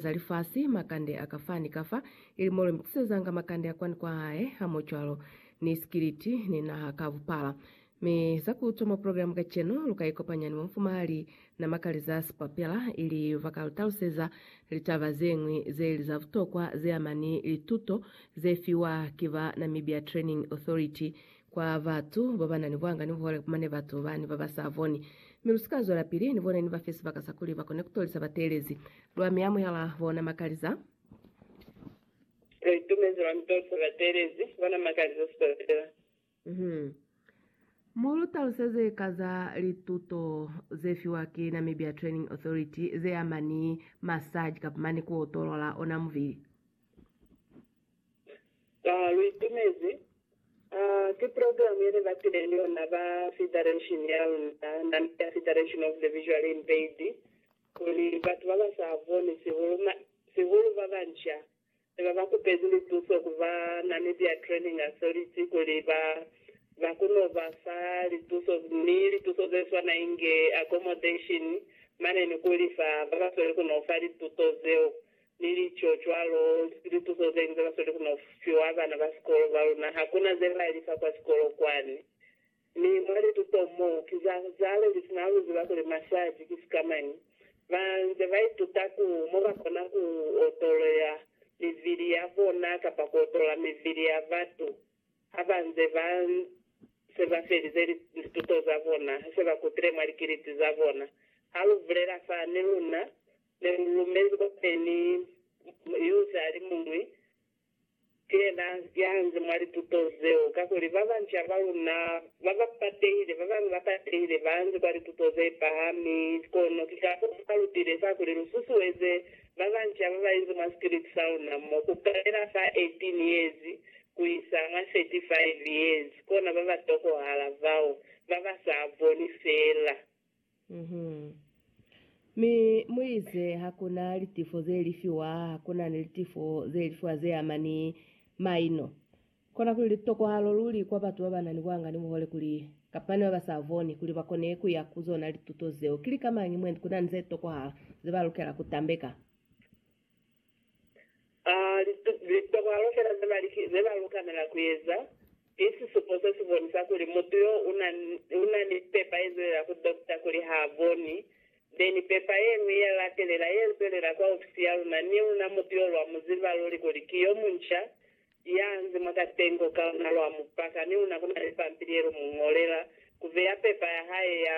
za lifasi, makande a kafa ni kafa, ili mo lu mitisezanga makande a kwani kwa hae, hamocwalo ni sikiliti, ni naha ka bupala. Mi za ku utwa mwa progilamu kacenu, lu ka ikopanya ni mufumahali na Makaliza Spapela, ili ba ka lu taluseza litaba ze ñwi ze li za butokwa ze ama ni lituto ze fiwa ki ba Namibia Training Authority kwa batu baba na ni buhanga ni buhole, mane batu bani baba sa boni, mi lu si ka zwela pili ni bone ni ba fe sibaka sa kuli ba kone ku tolisa bateelezi. Lwa mi amuhela bona makaliza. Lwa itumezi lwa mi tolisa bateelezi bona makaliza si to fela. Uhum. Mu lu taluseze ka za lituto ze fiwa ki Namibia Training Authority ze ama ni massage kapa mane ku otolola ona mubili. Ba lu itumezi. A ki program ye ne ba file yona ba federation ya luna, nami ya Federation of the Visually Impaired, kuli batu ba ba sa boni, sihulu, sihulu ba banca, ne ba ba kupezi lituso ku ba Namibia Training Authority kuli ba, ba kono ba fa lituso, ni lituso ze swana inge accommodation mane ni ku lifa ba ba sweli kono fa lituto zeo. Ni lico cwalo, lipuzo zeli za basweli ku no fiwa bana ba sikolo ba luna. Ha ku na ze ba li fa kwa sikolo kwani. Mi mwa lituto mo, ki za zale lifi na lu ziba kuli masaji ki sikamañi? Ba nze ba ituta ku mo ba kona ku otolela mivili ya bona kapa ku otola mivili ya batu ha ba nze ba se ba felize lituto za bona, ha se ba kutile mwa likiliti za bona. Ha lu bulela fa ni luna, Ne lu lumezi kwa peni yo zali muñwi ki yena ya nzi mwa lituto zeo, kakuli ba banca ba luna ba ba patehile, ba bañwi ba patehile, ba nzi kwa lituto ze pahami. Kono ki ka fo fa lutile fa kuli lu susueze ba banca ba ba inzi mwa sikiliti sa luna mo, ku kalela fa 18 yezi ku isa mwa 35 yezi, kona ba ba tokohala bao ba ba sa boni fela. Mi muize hakuna litifo zelifiwa, hakuna ni litifo zelifiwa zeama ni maino. Kona kuli litokwahalo luli kwa batu babana ni buhanga ni buhole kuli, kapa ni baba sa boni, kuli bakone kuya ku zona lituto zeo. Ki lika mañi mwendi kuna ni zetokwahala zeba lukela kutambeka? A Litokalo fela ze ba lukanela ku eza, ki sisupo se si bonisa kuli mutu yo u na ni pepa ye zwelela ku dokta kuli ha boni, be ni pepa ye ñwi ye latelela ye zwelela kwa ofisi ya luna, ni luna mutu yo lwa mu ziba luli kuli ki yo munca, ya nzi mwa katengo ka luna lwa mu paka, ni luna ku na ni pampili ye lu mu ñolela ku beya pepa ya hae ya.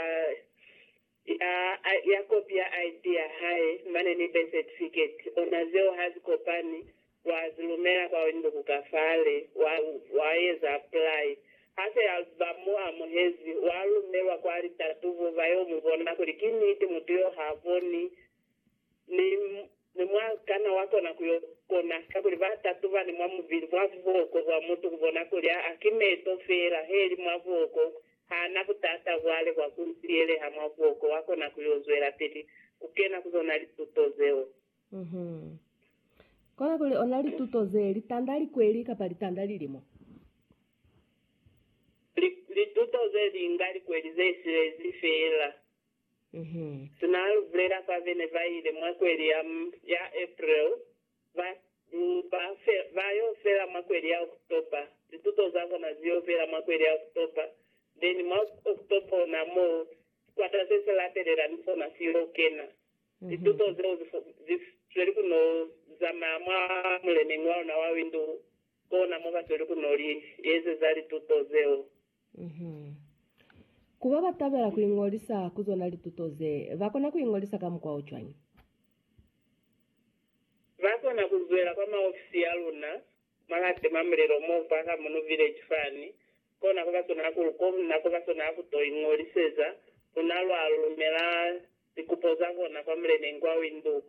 Ya, a, ya kopia ID ya hae, mane ni birth certificate, ona zeo ha zi kopani, wa zi lumela kwa winduku ka fale, wa, wa eza apply. Ha se a ba mo amuhezi, wa lumelwa kwa litatubo, ba yo mu bona kuli ki niti mutu yo ha boni. Mi, mi mwa kana wa kona ku yo kona, kakuli ba tatubani mwa mubili, mwa buhoko bwa mutu, ku bona kuli, aa, ki meto fela, he li mwa buhoko, ha na butata bwale bwa ku tiyeleha mwa buhoko, wa kona ku yo zwelapili ku kena ku zona lituto zeo. Uh-huh. Kona kuli ona lituto ze, litanda likweli kapa litanda lilimo? Li, lituto ze linga likweli ze silezi fela. Tuna a lu bulela fa bene ba ile mwa kweli ya, ya April, ba, ba, fe, ba yo fela mwa kweli ya October, lituto za bona zi yo fela mwa kweli ya October, then mwa October ona mo sikwata se si latelela ni sona si yo kena. Lituto zeo zi, zi sweli ku no zamaya mwa muleneñi wa luna wa Windhoek, kona mo ba sweli ku no li ezeza lituto zeo. Ku ba ba tabela ku iñolisa ku zona lituto ze, ba kona ku iñolisa ka mukwa o cwañi? Ba kona ku zwela kwa maofisi a luna mwa la Tima Mulilo mo kwa Kamuno Village fani kona ku ba sona ku lu kona ku ba sona ku to iñoliseza luna lwa lumela likupo za bona kwa muleneñi kwa Windhoek.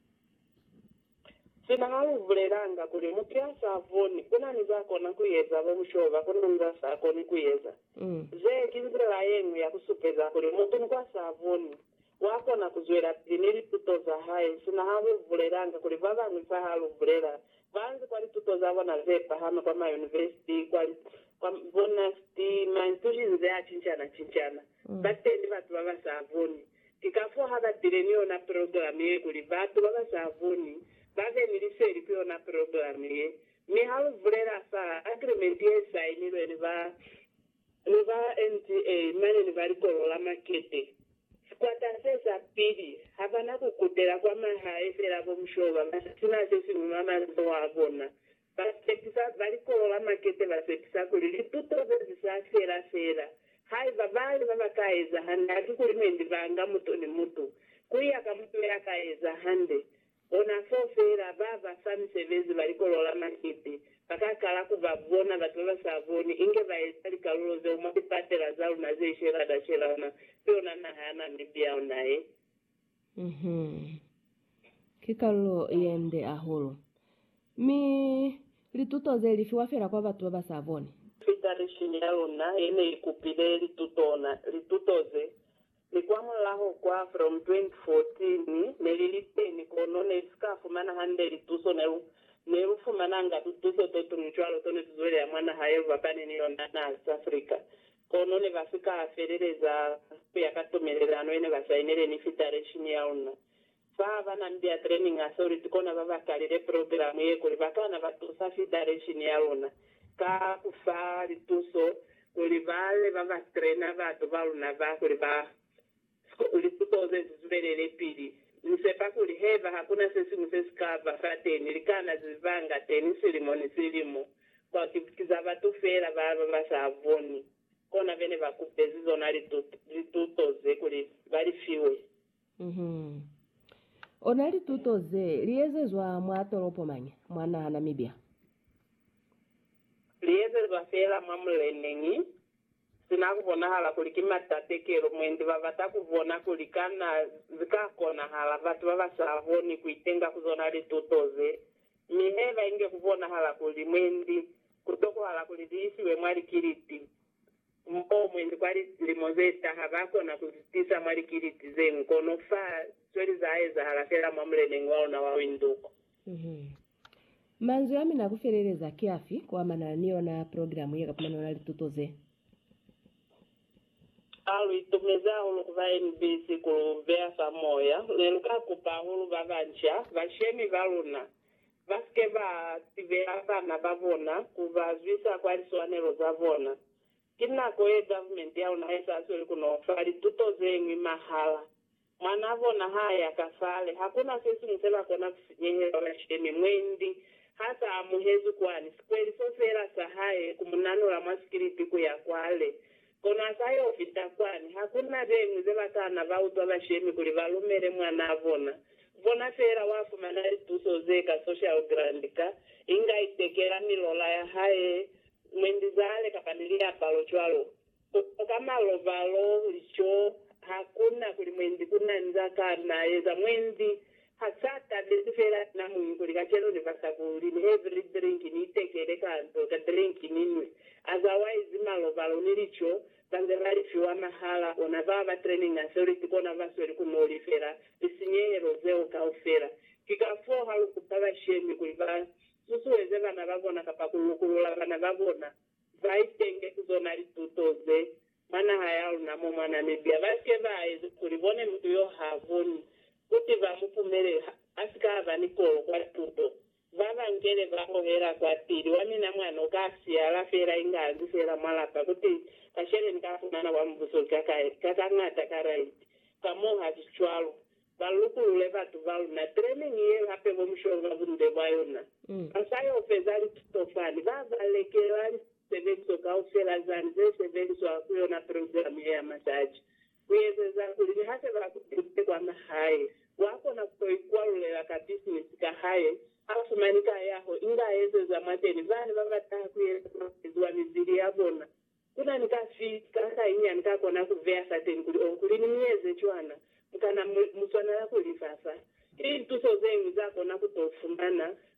Sina ha lu bulelanga kuli mutu ya sa boni una ni za kona ku eza, bo mushoba ku na ni za sa koni ku eza. Ze ki nzila ye ñwi ya ku supeza kuli mutu ni kwa sa boni wa kona ku zwelapili ni lituto za hae sina ha lu bulelanga kuli ba bañwi fa ha lu bulela ba nzi kwa lituto za bona ze pahama kwa mayunivesiti, kwa bonasiti, ma institutions a cincana-cincana. Ba teñi batu ba ba sa boni Ki kafoo ha ba bile ni yona programe ye kuli batu ba ba sa boni ba be ni liseli ku yona programe ye. Mi ha lu bulela fa agreement ye sainilwe ni ba ni ba NDA mane ni ba Likolo la Makete, sikwata se sa pili ha ba na ku kutela kwa mahae fela bo mushoba ba si na se siñwi mwa mazoho a bona, Basepisa ba likolo la makete basepisa kuli lituto ze zi sa fela fela haiba bali ba ba ka eza hande haki kuli ne ni banga mutu ni mutu kuya ka mutu ya ka eza hande. Ona foo feela, ba ba fa misebezi ba likolo la makete ba ka kala ku ba bona batu ba ba sa boni inge ba eza likalulo zeo mwa lipatela za luna ze shelada shelana, ki yona naha ya Namibia ona ye. Uhum. Ki kalulo yende ahulu. Mi lituto ze li fiwa fela kwa batu baba sa boni. Litarishini ya luna yene i kupile lituto ona lituto ze, mi kwa mulaho kwa From 2014 ne li li teni kono ne li si ka fumana hande lituso. Ne lu ne lu fumananga tutuso to tunu cwalo to ne tuzweleha mwa naha ye lubakani ni yona, naha South Africa. Kono ne ba si ka feleleza ku ya ka tumelelano ye ne ba sainile ni Fitareshiñi ya luna. Fa ba na ni dia Training Authority kona ba ba kalile progilamu ye kuli ba kana ba tusa Fitareshiñi ya luna ka ku fa lituso kuli ba be ba ba traina batu ba luna ba kuli ba Sikuli si koze si zubelele pili. Ni sepa kuli haiba hakuna sesiñwi se si ka ba fateni, li kana ze banga teni silimo ni silimo, kwa ki za batu feela ba ba ba sa boni. Kona bene ba kupezi zona lituto, lituto ze kuli ba li fiwe. Uhum. Ona lituto ze li ezezwa mwa tolopo mañi? Mwa naha Namibia. Li ezezwa feela mwa muleneñi. Sina kubonahala kuli ki matatekelo, mwendi babata kubona kuli kana zika konahala batu babasaboni kuitenga ku zona lituto ze. Mi haiba inge kubonahala kuli mwendi kutokohala kuli ziisiwe mwa likiliti, moo mwendi kwa lilimo zetaha bakona kuzitiisa mwa likiliti zenkono fa sweli zaaezahala feela mwa muleneñi waluna wa winduko. Manzwi a mina a ku feleleza ki afi kuamanana ni yona progilamu ye ka pumanela lituto ze? Ha lu itumezi hahulu ku ba NBC ku lu beya fa moya. Ne lu ka kupa hahulu ba banca, bashemi ba luna, ba si ke ba tibela bana ba bona ku ba zwisa kwa liswanelo za bona. Ki nako ye government ya luna i sa sweli ku no fa lituto ze ñwi mahala. Mwanaa bona ha ya ka fale, hakuna se siñwi se ba kona ku si nyehela kashemi. Mwendi ha sa amuhezwi kwani, sikweliso feela sa hae ku mu nanula mwa sikilipi ku ya kwale. Kono ha sa yo fita kwani, hakuna beñwi ze ba kana ba utwa bashemi kuli ba lumele mwanaa bona. Bona feela wa fumana lituso ze ka social grant ka, inga itekela milola ya hae, mwendi zale kapa ni liapalo cwalo. Ku koka malobalo, lico, ha ku na kuli mwendi ku na ni za ka na eza. Mwendi ha sa tabezi fela na muñwi kuli kacenu ni basa ku li ni every drink, ni itekele ka nto ka drink ni nwe. Otherwise, malobalo ni lico ba nze ba li fiwa mahala. Ona ba ba training authority kona ba sweli ku no lifela lisinyehelo zeo kaufela. Ki kafoo ha lu kupa bashemi kuli ba susueze bana ba bona kapa ku lukulula bana ba bona Baitenge ku zona lituto ze mwa naha ya luna mo mwa Namibia ba ke ba ezi kuli bone mutu yo ha koni kuti ba mu pumelele ha a si ka ba ni kolo kwa tuto. Ba ba nkele ba hohela kwa pili wa mina mwa no ka siyala fela inga azi fela mwa lapa kuti kashele ni ka fumana kwa mubuso ka ka ka ka ngata ka raiti. Ka mo ha si cwalo. Ba lukulule batu ba luna. Training ye hape bo musholo ba bunde bwa yona. Ba sa yo feza lituto fani. Ba ba lekela lisebeliswa kaufela zani ze sebeliswa ku yona program ye ya masaji, ku ezeza kuli ni ha se ba kutile kwa mahae, wa kona ku to ikwalulela ka business ka hae, a fumani kayaho inga ezeza mwateni. Bana ba ba taha ku yena ba eziwa mibili ya bona Ku na ni kafi ka kainyani ka kona ku beya fateni kuli, Oh, kuli ni mi eze cwana, mu kana mu swanela ku li fa fa. Ki lintuso ze ñwi za kona ku to fumana